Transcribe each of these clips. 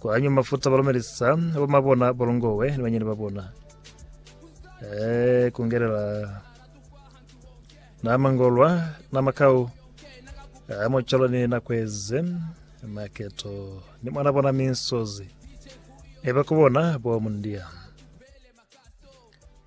Kwanywa mafuta balumelisa bomabona bolongowe ni banyeni babona. Eh, kungelela nama ngolwa nama kau amocholo ni nakweze maketo ni mwana bona minsozi eba kubona bo mundia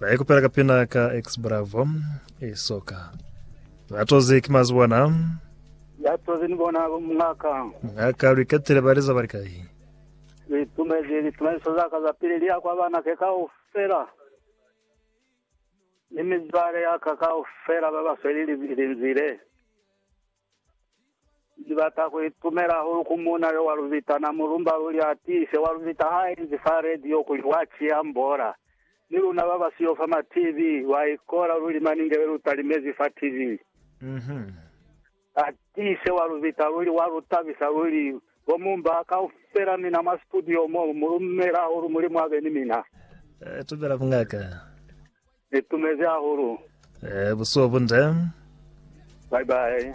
Ba ikupela ka pina ka X Bravo e soka. Ba toze ki mazi bona. Ya toze ni bona mngaka. Ngaka lu ikatile ba liza ba likai. Li tumezi li tumeliso za ka za pili li ya kwa bana ke kao fela. Ni mizwale ya ka kao fela ba ba sweli li, li nzile. Ni bata ku itumela hahulu ku muuna yo wa lu bita na mulumba luli a tiise wa lu bita ha inzi fa radio kuli wa kiha mbola. Ni luna ba ba siyo fa ma TV lwa ikola luli maningele lu talimezi fa TV. A tiise wa lu bita luli wa lu tabisa luli. Bo Mumba kaufela mina mwa studio mo, mu lumela hahulu Mulimu abe ni mina. Tumela mungaka. Ni tumezi hahulu. Ee, busuku bunde. Bye bye.